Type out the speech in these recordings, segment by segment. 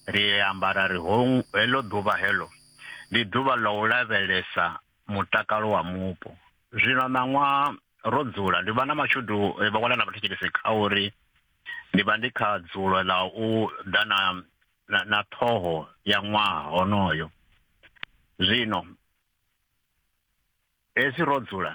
ri ambara ri ho heḽo ḓuvha heḽo ndi ḓuvha ḽa u lavhelesa mutakalo wa mupo zwino ṋaṅwa ro dzula ndi vha na mashudu eh, vha wana na vhathetshelesi kha uri ndi vha ndi kha dzulo ḽa u ḓa na na ṱhoho ya ṅwaha honoyo zwino hezwi ro dzula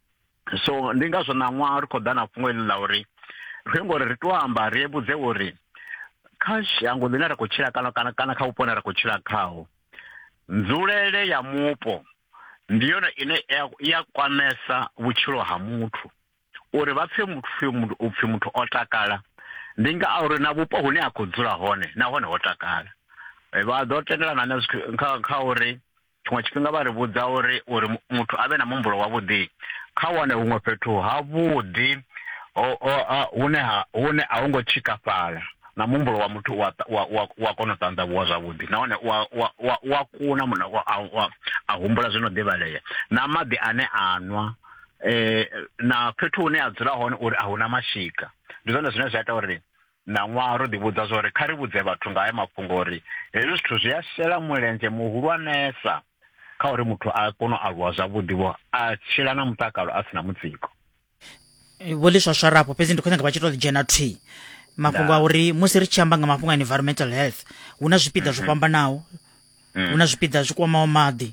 so ndi ngazwo ṋaṅwaha ri khou ḓa na fhungo iḽi ḽa uri ri ngo ri ri to amba ri vhudze uri kha shango ḽine ra khou tshila kana kana kana kha vhupo ne ra khou tshila khaho nzulele ya mupo ndi yone ine ya kwamesa vhutshilo ha muthu uri vha pfhe muthu u pfhi muthu o takala ndi nga a uri na vhupo hune a khou dzula hone nahone ho takala vha ḓo tendelana na kha uri tshiṅwe tshifhinga vha ri vhudza uri uri muthu a vhe na muhumbulo wavhuḓi kha wane huṅwe fhethu havhuḓi hune ha hune a hu ngo tshikafhala na muhumbulo wa muthu wa wa wa kona u ṱanḓavhuwa zwavhuḓi nahone wa wa wa wa kuna muna wa a humbula zwino ḓivhalea na maḓi ane a nwa eh na fhethu hune a dzula hone uri a huna mashika ndi zwone zwine zwa ita uri ṋaṅwaha ro ḓivhudza zwa uri kha ri vhudze vhathu nga haya mafhungo uri hezwi zwithu zwi a shela mulenzhe muhulwanesa kha uri muthu a kone u aluwa zwavhuḓi-vho a tshila na mutakalo a si na mutsiko eh, vho ḽi swaswara afho fhedzi ndi khou nyanga vha tshi tou ḽi dzhena thwi mafhungo a uri musi ri tshi amba nga mafhungo a environmental health hu na zwipiḓa zwo mhm. fhambanaho mm. hu na zwipiḓa zwi kwamaho maḓi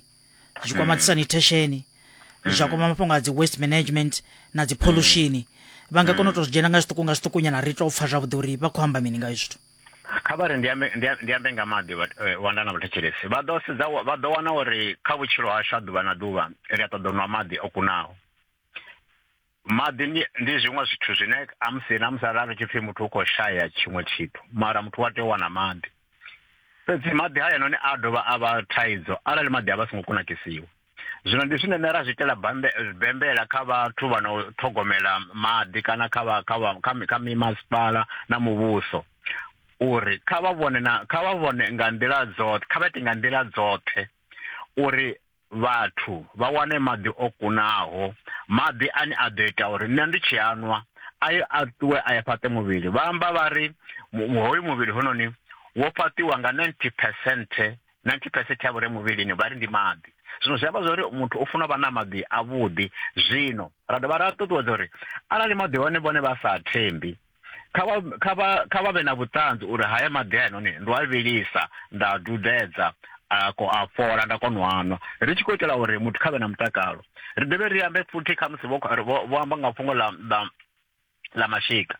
zwi tshi kwama dzi sanitation zwa kwama mafhungo a dzi waste management na dzi pollution vha nga kona u tou zwi dzhena nga zwiṱuku nga zwiṱuku nyana ri tou pfha zwavhuḓi uri vha khou amba mini nga zwithu kha vha ri ndi ambe- ndi a- ndi ambe nga maḓi vha- eh, wanda na vhathetshelesi vha ḓo sedza wa- vha ḓo wana uri kha vhutshilo hashu ha ḓuvha na ḓuvha ri a ṱoḓa u nwa maḓi o kunaho Maḓi ndi, ndi zwiṅwe zwithu zwine amusi na musi arali tshipfi muthu u khou shaya tshiṅwe tshithu mara muthu wa tea u wana maḓi fhedzi maḓi hayanoni a dovha a vha thaidzo arali maḓi a vha songo kunakisiwa zwino ndi zwine nṋe ra zwi itela bembela kha vhathu vha no ṱhogomela maḓi kana kha vha kha vha kha kha mimasipala na muvhuso uri kha vha vhone na kha vha vhone nga nḓila dzoṱhe kha vha ite nga nḓila dzoṱhe uri vhathu vha wane maḓi o kunaho, maḓi ane a ḓo ita uri nṋe ndi tshi a nwa a ye a ṱuwe a ye fhaṱe muvhili. Vha amba vha ri hoyu muvhili hononi wo fhaṱiwa nga 90 percent 90 percent ya vhure muvhilini vha ri ndi maḓi zwino zwi amba zwori muthu u funa vha na maḓi a vhuḓi zwino ra dovha ra ṱuṱuwedza uri arali maḓi hone vhone vha sa thembi kha vha kha vha kha vha vhe na vhuṱanzi uri haya maḓi a noni ndo a vhilisa nda a dudedza a ko a fhola nda kona u anwa ri tshi khou itela uri muthu kha vhe na mutakalo ri dovhe ri ambe futhi kha musi vho vho amba nga fhungo ḽa ḽa ḽa mashika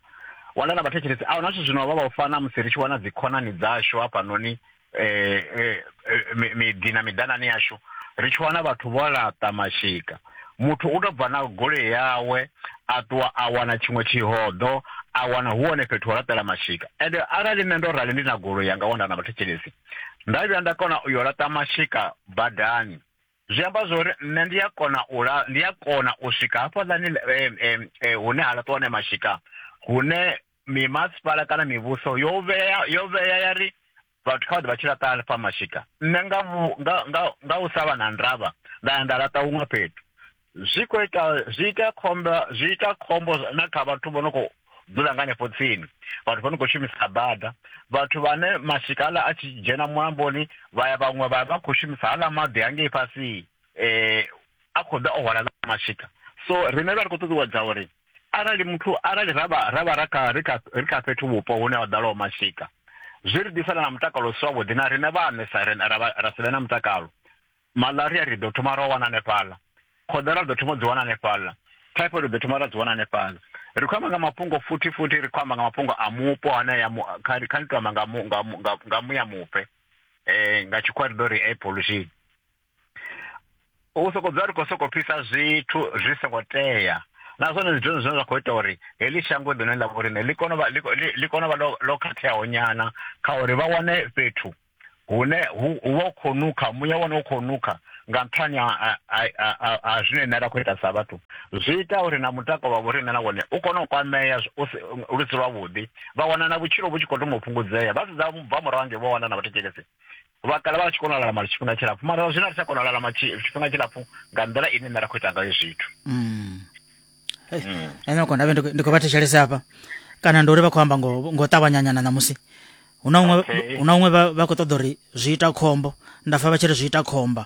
wana na vhathetshelesi a huna zwithu zwino vha vha u fana musi ri tshi wana dzi khonani dzashu hafhanoni eh, eh, eh miḓi na miḓanani yashu ri tshi wana vhathu vho laṱa mashika muthu u to bva na goloi yawe a ṱuwa a wana tshiṅwe tshihoḓo a wana hu hone fhethu ho laṱela mashika ende arali nṋe ndo rali ndi na goloi yanga wanda na vhathetshelesi nda vhuya nda kona u yo laṱa mashika badani zwi amba zwa uri nṋe ndi a kona u la ndi a kona u swika hafhaḽani eh, eh, eh, hune ha laṱiwa hone mashika hune mimasipala kana mivhuso yo vhea yo vhea ya ri vhathu kha vha ḓe vha tshi laṱa hanefha mashika nṋe nga nga u sa vha na ndavha nda ya nda laṱa huṅwe fhethu zwi khou ita zwi ita khombo zwi ita khombo na kha vhathu vho no khou dzula nga hanefho tsini vhathu vho no khou shumisa bada vhathu vhane mashika aḽa a tshi dzhena mulamboni vha ya vhaṅwe vha vha khou shumisa haḽa maḓi hangei fhasi um a khou ḓa o hwala mashika so riṋe ra ri khou ṱuṱuwedza uri arali muthu arali ra vha ra vha ra kha ri kha ri kha fhethu vhupo hune ha ḓalaho mashika zwi ri ḓisela na mutakalo u si wavhuḓi na riṋe vhaṋe sa ri ra si vhe na mutakalo malaria ri ḓo thoma ra wana hanefhaḽa khoḓera ri ḓo thoma u dzi wana hanefhaḽa typhoid ri ḓo thoma ra dzi wana hanefhaḽa ri khou amba nga mafhungo futhi futhi ri khou amba nga mafhungo a mupo hanea kha ni tou amba nga muya mupe um nga tshikhuwa ri ḓo ri air pollution u sokou dzula ri khou sokou pfisa zwithu zwi songo tea na zwone ndi zwone zwine zwa khou ita uri heḽi shango ḽine ḽa vho rine ḽi kone vha ḽi kone vha ḽo khatheaho nyana kha uri vha wane fhethu hune hu vha u khou nukha muya wane u khou nukha nga nṱhani ha zwine nṋe ra khou ita sa vhathu zwi ita uri na mutakalo wa vho rine na wone u kone u kwamea lu si lwavhuḓi vha wana na vhutshilo vhu tshi khou thoma u fhungudzea vha sedza bva murahu ngei vho wana na vhathetshelesi Vha kale vha tshi kona u lalama tshifhinga tshilapfu mara zwino a ri tsha kona u lalama tshifhinga tshilapfu nga nḓila ine nṋe ra khou ita ngayo zwithu Mm. Hey, Mm. ene uko ndavhe ndi khou- ndi khou vha thetshelese hafha kana ndi uri vha khou amba ngo ngo ṱavhanyanyana ṋamusi hu na uṅwe Okay. hu na uṅwe vha vha khou ṱoḓa uri zwi ita khombo nda pfa vha tshi ri zwi ita khomba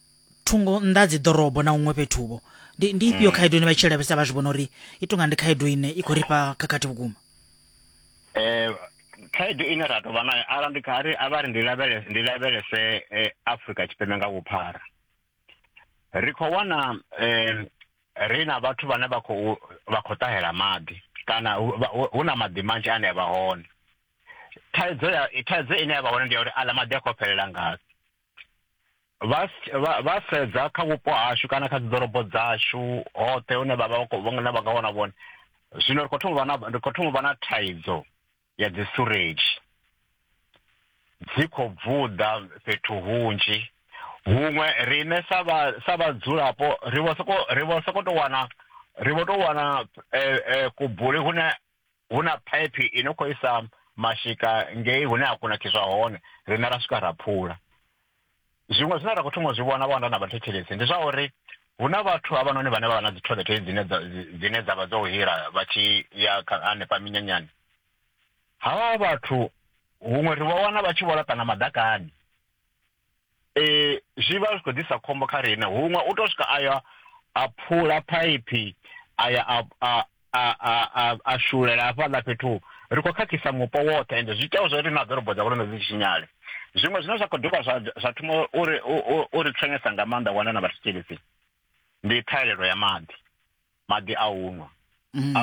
thungo nnḓa dzi ḓorobo na huṅwe fhethu vho ndi ndi ifhio mm. khaedu ine vha tshi lavhelesa vha zwi vhona uri i tonga ndi khaedu ine i khou rifha khakhathi vhukuma eh khaedu ine ra tovha nayo ara ndi kha ri avha ri ndi lavhelese ndi lavhelese eh, Africa tshipembe nga vhuphara ri khou wana eh ri na vhathu vhane vha khou vha khou ṱahela maḓi kana hu na maḓi manzhi ane a vha hone thaidzo ya thaidzo ine ya vha hone ndi ya uri aḽa maḓi a khou fhelela ngafhi vha vha vha sedza kha vhupo hashu kana kha dziḓorobo dzashu hoṱhe hune vha vha vha na vha nga wana vhone zwino ri khou thoma vha na ri khou thoma vha na thaidzo ya dzi sureji dzi khou bvuḓa fhethu hunzhi huṅwe riṋe sa vha sa vhadzulapo ri vho soko ri vho soko to wana ri vho to wana eh, eh, kubuli hune hu na phaiphi i no khou isa mashika ngei hune ha kunakiswa hone riṋe ra swika ra phula zwiṅwe zwine ra khou thoma u zwi vhona vhonda na vhathetshelesi ndi zwa uri hu na vhathu havhanoni vhane vha vha na dzi toilet dzine dzine dza vha dzo hila vha tshi ya hanefha minyanyani havha vhathu huṅwe ri vha wana vha tshi vho laṱana madakani eh zwi vha zwi khou ḓisa khombo kha riṋe huṅwe u to swika aya a phula phaiphi aya a a a a a shulela hafhaḽa fhethu ri khou khakhisa mupo woṱhe ende zwi itaho zwo ri na ḓorobo dza vhulondwe dzi tshinyale zwiṅwe zwine zwa khou dovha zwa zwa thoma uri u ri thonyesa nga maanḓa wana na vhathu tshelisi ndi ṱhahelelo ya maḓi maḓi a u nwa mm.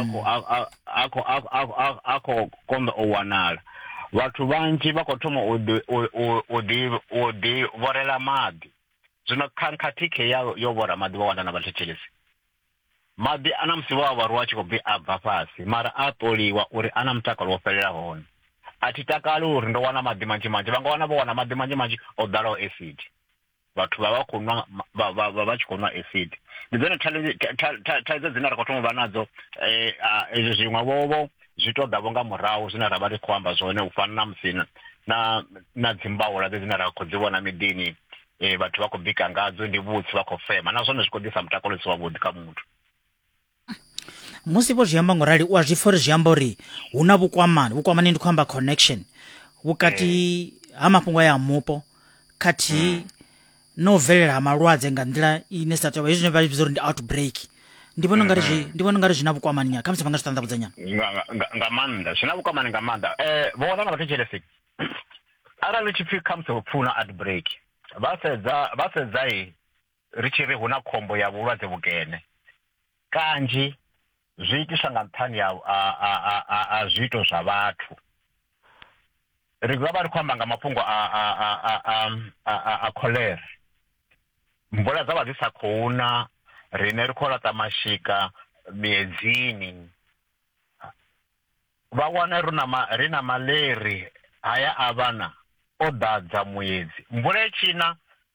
a khou konḓa u wanala vhathu vhanzhi vha khou thoma u ḓi vhorela maḓi zwino khankhathikhe ya yo vhora maḓi vha wana na vhathetshelesi maḓi a na musi vho a vharuwa a tshi khou bvi a bva fhasi mara a ṱoliwa uri a na mutakalo wo fhelela hone a thi takali uri ndo wana maḓi manzhi manzhi vha nga wana vho wana maḓi manzhi manzhi o ḓalaho acid vhathu vha vha khou nwa vha vha tshi khou nwa acid ndi dzone thaidzo dzine ra khou thoma u vha nadzo um zwiṅwe vhovho zwi to ḓavho nga murahu zwine ra vha ri khou amba zwone u fana na musi na na dzimbaula dze dzine ra khou dzi vhona miḓini um vhathu vha khou bika ngadzo ndi vhutsi vha khou fema na zwone zwi khou ḓisa mutakalo u si wavhuḓi kha muthu musi vho zwi amba ngo rali u a zwi pfha uri zwi amba uri hu na vhukwamani vhukwamani ndi khou amba connection vhukati eh. ha mafhungo ya mupo khathihi mm. no bvelela ha malwadze nga nḓila ine sa tovha hezwi zwine vha vhidza uri ndi outbreak ndi vhona ungari zwi mm-hmm. ndi vhona ungari zwi na vhukwamani nyana khamusi vha nga zwi ṱanḓavhudza nyana nga maanḓa zwi na vhukwamani nga maanḓa um eh, vho wana na vhathetshelesi arali tshipfi khamusi hupfi hu na outbreak vha sedza vha sedzai ri tshi ri hu na khombo ya vhulwadze vhukene kanzhi zwi itiswa nga nṱhani a zwiito zwa vhathu ri vha vha ri khou amba nga mafhungo a kholera mvula dza vha dzi sa khou na rine ri khou laṱa mashika miedzini vha wana ri na ri na maleri haya a vhana o ḓadza muedzi mvula etshina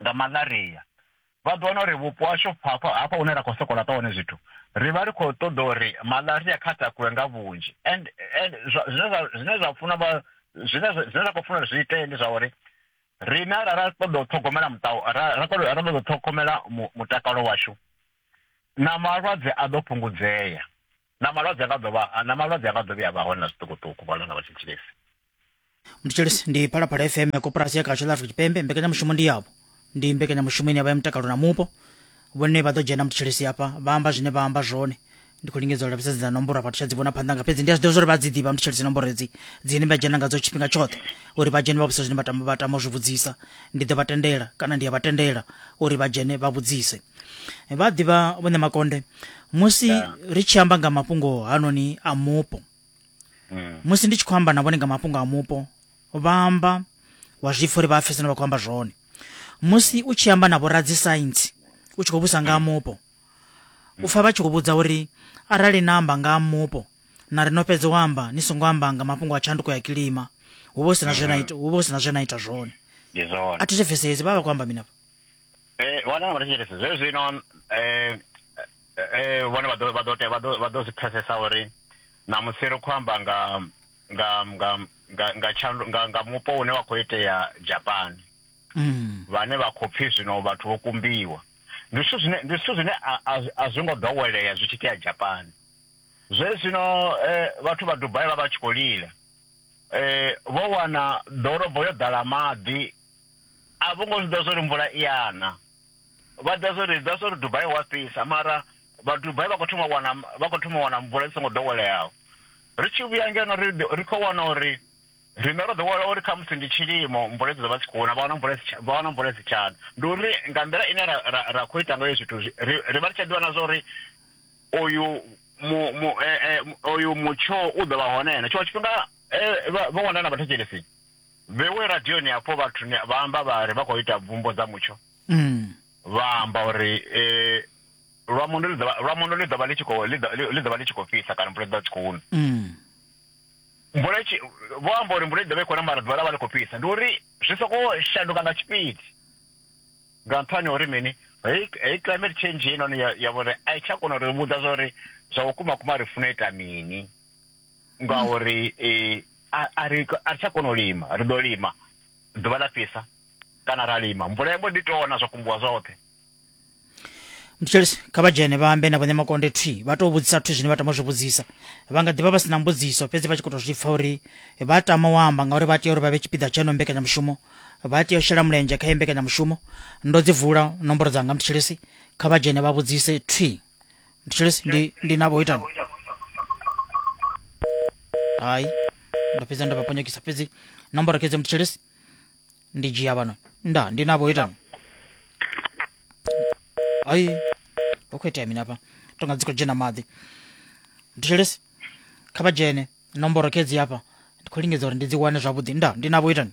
nga malaria vha ḓo wana uri vhupo hashu hafha hafha hune ra khou soko laṱa hone zwithu ri vha ri khou ṱoḓa uri malaria kha takuwe nga vhunzhi and zwine zwa funa vha zwine zwa khou funa uri zwi itee ndi zwa uri rine ra ra ṱoḓa u ṱhogomela muṱao ra ra ṱoḓa u ṱhogomela mutakalo washu na malwadze a ḓo fhungudzea na malwadze a nga ḓo vha na malwadze a nga ḓo vhuya vha hone na zwiṱukuṱuku vha lona vha tshi tshilisa mthetshelesi ndi phalaphala fm ya koporasi ya khatsho ḽa afrika tshipembe mbekanyamushumo ndi yavho ndi mbekanyamushumo ine ya vha ya mutakalo na mupo vhone vha ḓo dzhena mthetshelesi hafha vha amba zwine vha amba zwone ndi khou lingedza u lavhelesa dzi dza nomboro vhathu tsha dzi vhona phanḓa nga fhedzi ndi a zwi ḓivha zwa uri vha dzi ḓivha mthetshelesi nomboro edzi dzine vha dzhena ngadzo tshifhinga tshoṱhe uri vha dzhene vha vhudzisa zwine vha tama vha tama u zwi vhudzisa ndi ḓo vha tendela kana ndi a vha tendela uri vha dzhene vha vhudzise vha a ḓivha vhone makonde musi yeah. ri tshi amba nga mafhungo hanoni a mupo mm. musi ndi tshi khou amba na vhone nga mafhungo a mupo vha amba wa zwipfa uri vha a pfesana vha khou amba zwone musi u tshi amba na vhoradzi saintsi u tshi khou vhusa nga mupo u pfa vha tshi khou vhudza uri arali na amba nga mupo na ri no fhedza u amba ni songo amba nga mafhungo a tshanduko ya kilima hu vha hu sina zwe na mm-hmm. ita hu vha hu sina zwe na ita zwone a thi zwi pfesesi vha vha khou amba mini afha Vhane vha vha thetshelesa zwe zwino vhone vha ḓo vha ḓo tea vha ḓo vha ḓo zwi pfesesa uri ṋamusi ri khou amba nga nga nga nga nga tshandu nga nga mupo une wa khou itea Japan vhane vha khou pfhi zwino vhathu vho kumbiwa ndi zwithu zwine ndi zwithu zwine a zwi ngo ḓowelea zwi tshi itea Japan zwe zwino vhathu vha Dubai vha vha tshi khou lila vho wana ḓorobo yo ḓala maḓi. a vho ngo zwi ḓivha zwori mvula i ana vha ḓivha zwori ḓivha zwori dubai wa fhisa mara vha dubai vha khou thoma wana vha khou thoma wana mvula i songo ḓoweleaho ri tshi vhuya ngeno ri ri khou wana uri riṋe ro ḓowela uri kha musi ndi tshilimo mvula dzi ḓo vha dzi khou na vha wana mvula dzi vha wana mvula dzi tshana ndi uri nga nḓila ine ra ra ra khou ita ngayo zwithu ri ri vha ri tsha ḓivha na zwa uri oyu mu mu oyu mutsho u ḓo vha hone na tshiṅwe tshifhinga vha wana na vhathetshelesi vhewe radioni hafho vhathu vha amba vha ri vha khou ita bvumbo dza mutsho mm. vha amba uri eh, lwa mundo ḽi ḓovha lwa mundo ḽi ḓovha ḽi tshi khou ḽi ḓovha ḽi tshi khou fhisa kana mvula ḽi ḓovha tshi khou na mm. mvula tshi vho amba uri mvula i ḓovha i khou na mara ḓuvha ḽa vha ḽi khou fhisa ndi uri zwi soko shanduka nga tshipidi nga nṱhani uri mini hei hei climate change heinoni ya vhori a i tsha kona uri vhudza zwa uri zwa vhukuma kuma ri funa ita mini ngauri eh, a- a ri a ri tsha kona u lima ri ḓo lima ḓuvha ḽa fhisa kana ra lima mvula ya mbo ḓi tona zwa kumbuwa zwoṱhe mthetshelesi kha vha dzhene vha ambe na vhone makonde thwi vha tou vhudzisa zwithu zwine vha tama u zwi vhudzisa vha nga ḓivha vha si na mbudziso fhedzi vha tshi khou tou zwi pfa uri vha tama u amba ngauri vha tea uri vha vhe tshipiḓa tsha ino mbekanyamushumo vha tea u shela mulenzhe kha iyi mbekanyamushumo ndo dzi vula nomboro dzanga mthetshelesi kha vha dzhene vha vhudzise thwi Mthelesi ndi ndi nabo itani. Hayi. Ndapeza ndapapanyakisa pezi. Nambara keze mthelesi. Ndi jia bano. Nda ndi nabo itani. Hayi. Okhwete mina apa. Tonga dziko jena maḓi. Mthelesi. Kha vha dzhene. Nomboro kezi apa. Ndi khou lingedza uri ndi dzi wane zwavhuḓi. Nda ndi nabo itani.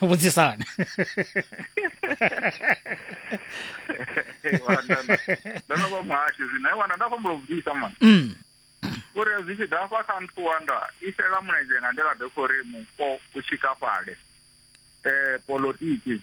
vhudzisana ndo no vha muhashi zwino wana nda khombo vhudzisa mani mm. uri zwi tshi ḓa fha kha nthu wanda i shela mulenzhe nga nḓila ḓe khou ri mupo u tshikafhale um eh, polotiki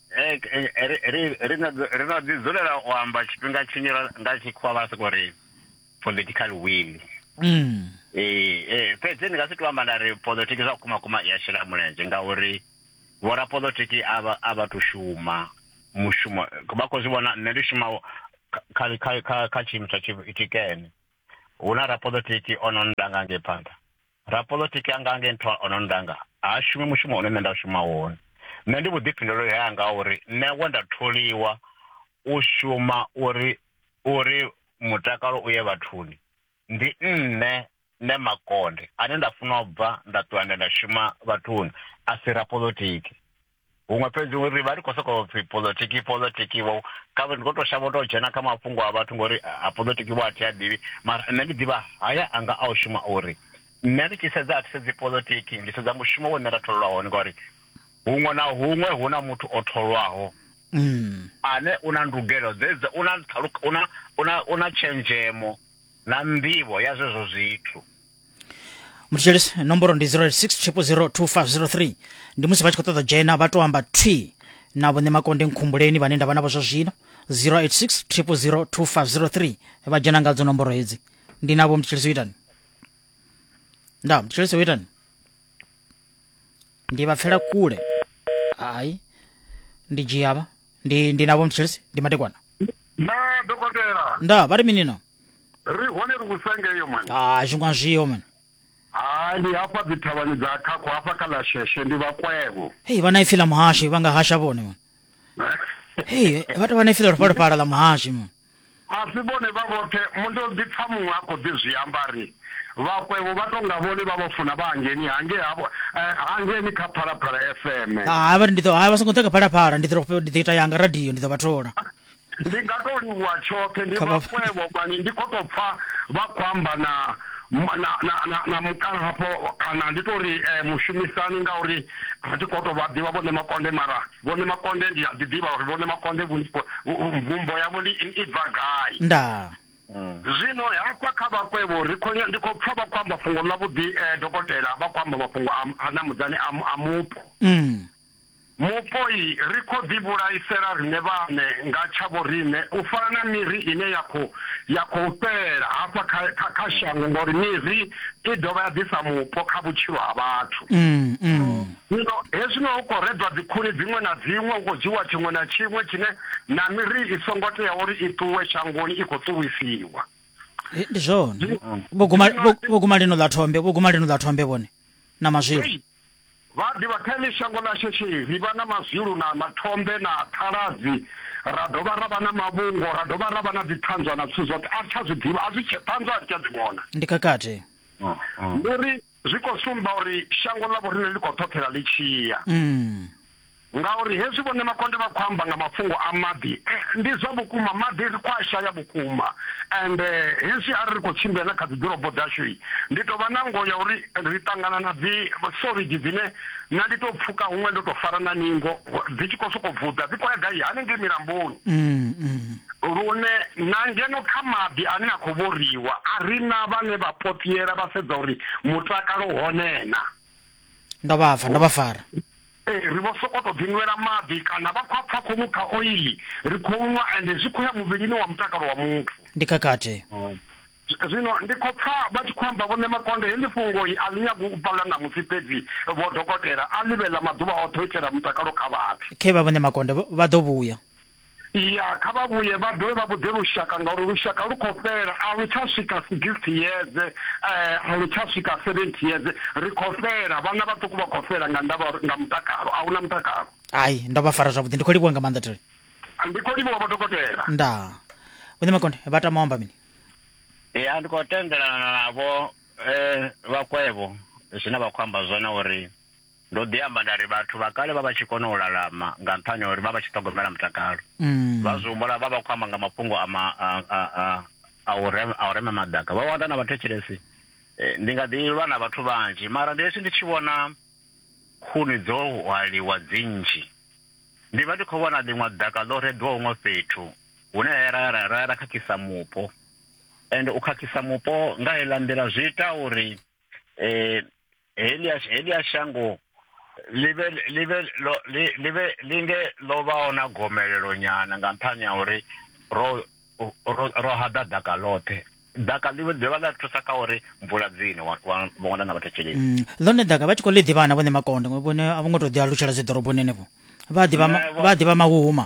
Eh, eh, ri ri- ri no ḓi- ri no ḓi dzulela u amba tshifhinga tshinzhi ra- nga tshikhuwa vha soko ri political will Mm. Eh, eh, fhedzi ndi nga si to amba nda ri polotiki zwa kuma kuma i a shela mulenzhe ngauri vhorapolotiki a vha- a vha to shuma mushumo vha khou zwi vhona nṋe ndi shuma kha- kha- kha- kha- kha tshiimiswa tshi- tshikene hu na rapolotiki o no nda nga ngei phanḓa Rapoḽotiki anga a nge nṱha o no ndanga, ha shumi mushumo une nṋe nda shuma wone. Nṋe ndi vhuḓifhinduleli hanga ha uri nṋe we nda tholiwa u shuma uri uri mutakalo u ye vhathuni, ndi nṋe Nṋe Makonde ane nda funa u bva nda ṱuwa nda ya nda shuma vhathuni, a si Rapoḽotiki. huṅwe fhedzi uri vha ri khou sokou pfhi polotiki polotiki vho kavhe ndi khou tou shavha u tou dzhena kha mafhungo a vhathu ngori a polotiki vho a thi a ḓivhi mara nṋe ndi ḓivha haya anga a u shuma uri nṋe ndi tshi sedza a thi sedzi polotiki ndi sedza mushumo wo nṋe nda tholelwa hone ngori huṅwe na huṅwe hu na muthu o tholwaho mm. ane u na ndugelo dzedza u na u na u na tshenzhemo na nḓivho ya zwezwo zwithu mutshitsheli nomboro ndi 06002503 ndi musi vha tshi khou ṱoḓa dzhena vha tou amba twi na vhone makonde nkhumbuleni vhane nda vha navho zwa zwino 0860002503 vha dzhena ngadzo nomboro hedzi ndi navho mutshitsheli soitani nda mutshitsheli soitani ndi vha pfela kule hayi ndi dzhiavha ndi ndi navho mutshitsheli ndi matekwana na dokotela nda vha ri minino ri hone ri vhusa ngeyo mani ha zwi nga zwiyo mani ha ndi hafha dzi thavhani dza khakho hafha kha ḽa sheshe ndi vhakwevho hey vha na ipfi ḽa muhashi vha nga hasha vhone mani hey vha tovha na ipfi ḽa ri fhole phala ḽa muhashi mani a si vhone vha vhoṱhe mundo ḓi pfa muṅwe a khou ḓi zwi amba ri vhakwevho vha tonga vhone vha vha funa vha hangeni hange havho eh, hangeni kha phalaphala fm ha vha ndi ḓo ha vha songo ḓa kha phalaphala ndi ḓo ndi ḓo ita yanga radio ndi ḓo vha thola Ndi nga tou livhuwa tshoṱhe, ndi vhafhwevho vhane ndi khou tou pfa vha khou amba na na na na na mukala hafho kana ndi to ri eh, mushumisani ngauri a thi khou tou vha ḓivha vhone makonde mara vhone makonde ndi a ḓi ḓivha uri vhone makonde mvumbo yavho ndi i bva gai ndaa zwino hafha kha vhakwevho ri khonya ndi khou pfa vha khou amba fhungo ḽa vhuḓi eh, dokotela vha khou amba mafhungo a na mudzani a mupo mm. Mupo-i, ri khou ḓivhulaisela riṋe vhaṋe nga tshavhoriṋe u fana na miri ine ya khou ya khou fhela hafha kha kha kha shango, ngauri miri i dovha ya ḓisa mupo kha vhutshilo ha vhathu. Zwino hezwino hu khou redzwa dzikhuni dziṅwe na dziṅwe, hu khou dzhiiwa tshiṅwe na tshiṅwe tshine, na miri i songo tea uri i ṱuwe shangoni i khou ṱuwisiwa. Ndi zwone. Vho guma, vho, vho guma lino ḽa thombe, vho guma lino ḽa thombe vhone, na mazwilu. Vha a ḓivha, kha heḽi shango ḽa shishi ri vha na mazwilu na mathombe na ṱhaladzi, ra dovha ra vha na mavhungo, ra dovha ra vha na dziṱhanzwa na zwithu zwoṱhe. A ri tsha zwi ḓivha, a zwi tshe, ṱhanzwa a ri tsha dzi vhona. Ndi khakhathi. Ndi uri zwi khou sumba uri shango ḽa vhoriṋe ḽi khou ṱhoṱhela ḽi tshi ya. Ngauri hezwi Vho Nemakonde vha khou amba nga mafhungo a maḓi, ndi zwa vhukuma maḓi ri khou a shaya vhukuma and hezwi arali ri khou tshimbila na kha dzi ḓorobo dzashu ndi tou vha na ngoho ya uri ri ṱangana na dzi sorigi dzine na ndi tou pfuka huṅwe ndo tou fara na ningo dzi tshi khou sokou vuḓa dzi khou ya gai hanengei milamboni. Lune na ngeno kha maḓi ane a khou vhoriwa a ri na vhane vha potiela vha sedza uri mutakalo hone na. Ndo vha pfa, ndo vha fara. Ee, ri vho sokou tou ḓinwela maḓi kana vha khou a pfa khou nukha oiḽi. Ri khou nwa ende zwi khou ya muvhilini wa mutakalo wa muthu. Ndi khakhathi. Zwino ndi khou pfa vha tshi khou amba vhoṋe makonde, heḽi fhungoi a ḽi nyagi u pfala ṋamusi fhedzi vho dokotela, a ḽi vhe ḽa maḓuvha oṱhe u itela mutakalo kha vhathu. Khevha vhoṋe makonde vha ḓo vhuya. Ya, kha vha vhuye vha dovhe vha vhudze lushaka, ngauri lushaka lu khou fhela. A lu tsha swika sigisthi yeze, a lu tsha swika seventhi yeze. Ri khou fhela, vhana vhaṱuku vha khou fhela nga ndavha ya uri nga mutakalo, a hu na mutakalo. Hai, ndo vha fara zwavhuḓi. Ndi khou livhuwa nga maanḓa, Thuli. Ndi khou livhuwa Vho Dokotela. Ndaa. Vho Nyamakonde, vha tama u amba mini? Ya, ndi khou tendelana navho vha Kwevho zwine vha khou amba zwone uri Ndo ḓi amba nda ri, Vhathu vha kale vha vha tshi kona u lalama nga nṱhani ha uri vha vha tshi ṱhogomela mutakalo. Vha zwi humbula vha vha khou amba nga mafhungo a ma, a, a, a, a u rema, a u rema maḓaka. Vho wana na vhathetshelesi. Ndi nga ḓi lwa na vhathu vhanzhi, mara ndi hezwi ndi tshi vhona khuni dzo hwaliwa dzi nnzhi, ndi vha ndi khou vhona ḽiṅwe ḓaka ḽo reḓwa huṅwe fhethu hune ra ya ra, ra ya ra khakhisa mupo. Ende u khakhisa mupo nga heiḽa nḓila zwi ita uri, helia helia shango ḽi vhe ḽi vhe ḽi vhe ḽi nge ḽo vhaho na gomelelo nyana nga nṱhani ha uri ro ro haḓa ḓaka ḽoṱhe ḓaka ḽi ḓivha ḽa thusa kha uri mvula dzine vhona na vhathetsheleli mm, ḽone ḓaka vha tshi khou ḽi ḓivha na vhone makonde vhone a vho ngo tou ḓi alutshela dzi ḓoroboni henefho vha ḓivha vha ḓivha mahuhuma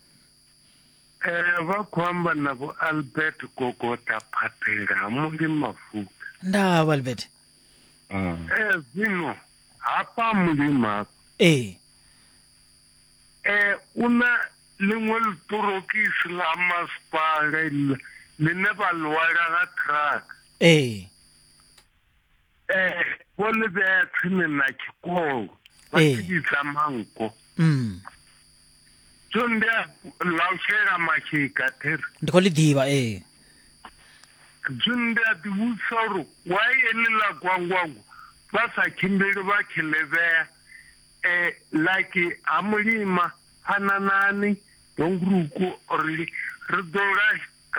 Eh, vha khou amba na vho albert gogota phaphela ha mundi mafuta ndaa vho albert Mm. Eh, zwino hafha mulima ee eh, u na ḽiṅwe ḽiṱorokisi ḽa masipala iḽa ḽine vha ḽiwala nga truck ee eh bo le be tsene na ke ko ba eh. ke tsa manko mm so ndi a laushela mashika theri ndi khou ḽi ḓivha ee so ndi a ḓivhusa uri why eḽiḽa gwangwango vha sa tshimbili vha tshi ḽevhea um like ha mulima phananani dongruku or ri ḓo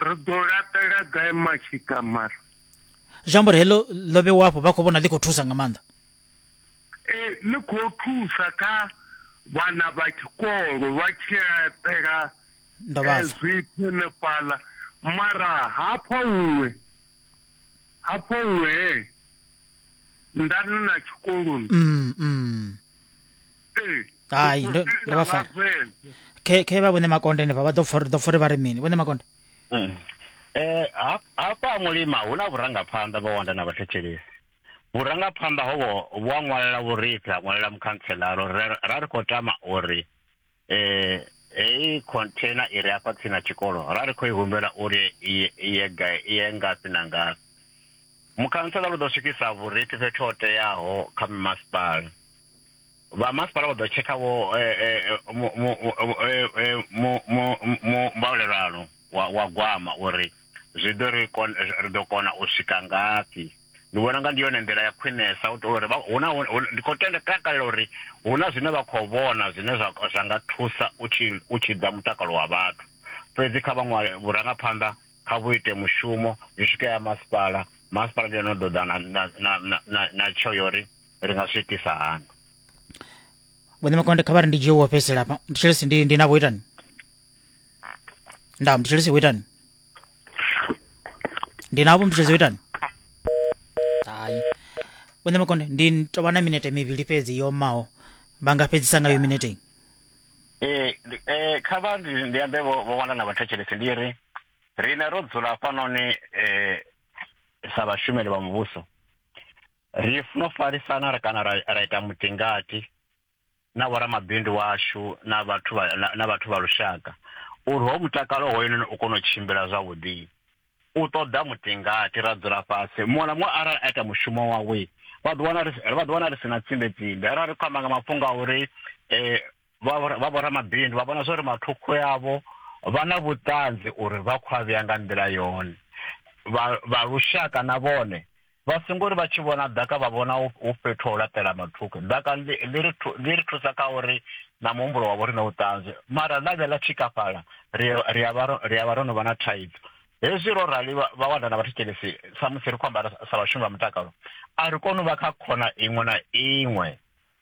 ri ḓo laṱela gai mashika mara zwi amba uri heḽo ḽo vhewa afho vha khou vhona ḽi khou thusa nga maanḓa ee ḽi khou thusa kha vhana vha tshikolo vha tshi laṱela zwithu henefhaḽa mara hafha huṅwe hafha huṅwe he ndani na tshikoloni mm, mm. ee hai ndo vha fara khe vha vhone makonde henefha vha ḓo pfa uri ḓo pfa uri vha ri mini vhone makonde Mm. Eh ha- hafha ha mulima hu na vhurangaphanḓa vha wanda na vhathetshelesi vhurangaphanḓa hovho vhu a ṅwalela vhurifhi ha ṅwalela mukhantselara uri ra- ra ri khou tama uri eh heyi container i re afha tsini na tshikolo ra ri khou i humbela uri i- i ye gai- i ye ngafhi na ngafhi mukhantselara u ḓo swikisa vhurifhi fhethu ho teaho kha mimasipala vha masipala vha ḓo tshekha vho mbaulelano wa gwama uri zwi ḓo ri ri ḓo kona u swika ngafhi ndi vhona nga ndi yone nḓila ya khwinesa u tori huna ndi khou tenda takalela uri huna zwine vha khou vhona zwine zwa zwa nga thusa u tshi u tshi ḓa mutakalo wa vhathu fhedzi kha vhaṅwe vhurangaphanḓa kha vhu ite mushumo zwi swike ya masipala masipala ndi yone ḓo ḓa na na na na na tsho yori ri nga zwi itisa hani vhone makonde kha vha ri ndi dzhie wo fhedzisela hafha ndi tshelesi ndi ndi navho itani nda ndi tshelesi wo itani ndi navho ndi tshelesi wo itani hayi vhone makonde ndi tovha na minete mivhili fhedzi yo maho vha nga fhedzisa ngayo minete iyi ee ndi- ee, kha vha ndi ndi ambe vho vho wana na vhathetshelesi ndi ri rine ro dzula hafhanoni um sa vhashumeli vha muvhuso Ri funa u farisana kana ra ita mutingati na vhoramabindu washu na vhathu vha na vhathu vha lushaka uri ho mutakalo hoyunoni u kone u tshimbila zwavhuḓi. U ṱoḓa mutingati ra dzula fhasi muṅwe na muṅwe arali a ita mushumo wawe vha ḓo wana vha ḓo wana ri si na tsimbe tsimbe arali ri khou amba nga mafhungo a uri vha vhoramabindu vha vhona zwa uri mathukhu yavho vha na vhuṱanzi uri vha khou a vhea nga nḓila yone vha lushaka na vhone vha songo ri vha tshi vhona ḓaka vha vhona hu fhethu ho laṱela mathukhu ḓaka ḽi ri thusa kha uri na muhumbulo wavho ri na vhuṱanzi mara ḽa vhe ḽa tshikafhala ri a vha ro no vha na thaidzo hezwi ro rali vha wana na vhathetshelesi samusi ri khou ambara sa vhashumi vha mutakalo a ri koni u vha kha khona iṅwe na iṅwe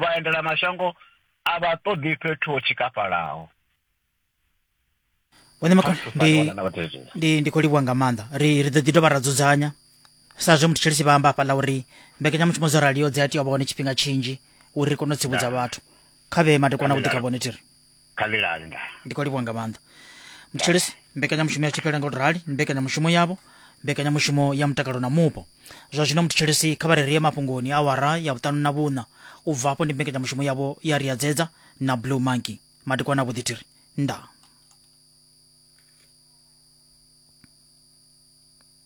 vhaendela mashango a vha ṱoḓi fhethu ho tshikafhalaho vhone makho ndi ndi ndi khou livhuwa nga maanḓa ri ri ḓo ḓi dovha ra dzudzanya sa zwe muthu tshelisi vha amba hafha ḽa uri mbekanyamushumo dzo raliho dzi a tea u vha hone tshifhinga tshinzhi uri ri kone u tsivhudza vhathu kha vhee madekwana vhuḓi kha vhone thiri khalelani nda ndi khou livhuwa nga maanḓa mthetshelesi mbekanyamushumo ya tshipela nga u rali ndi mbekanyamushumo yavho mbekanyamushumo ya mutakalo na mupo zwa zwino mthetshelesi kha vha re rie mafhungoni awara ya vhuṱanu na vhuṋa u bva afho ndi mbekanyamushumo yavho ya riadzedza na blue monkey madekwana a vhuḓithiri ndaa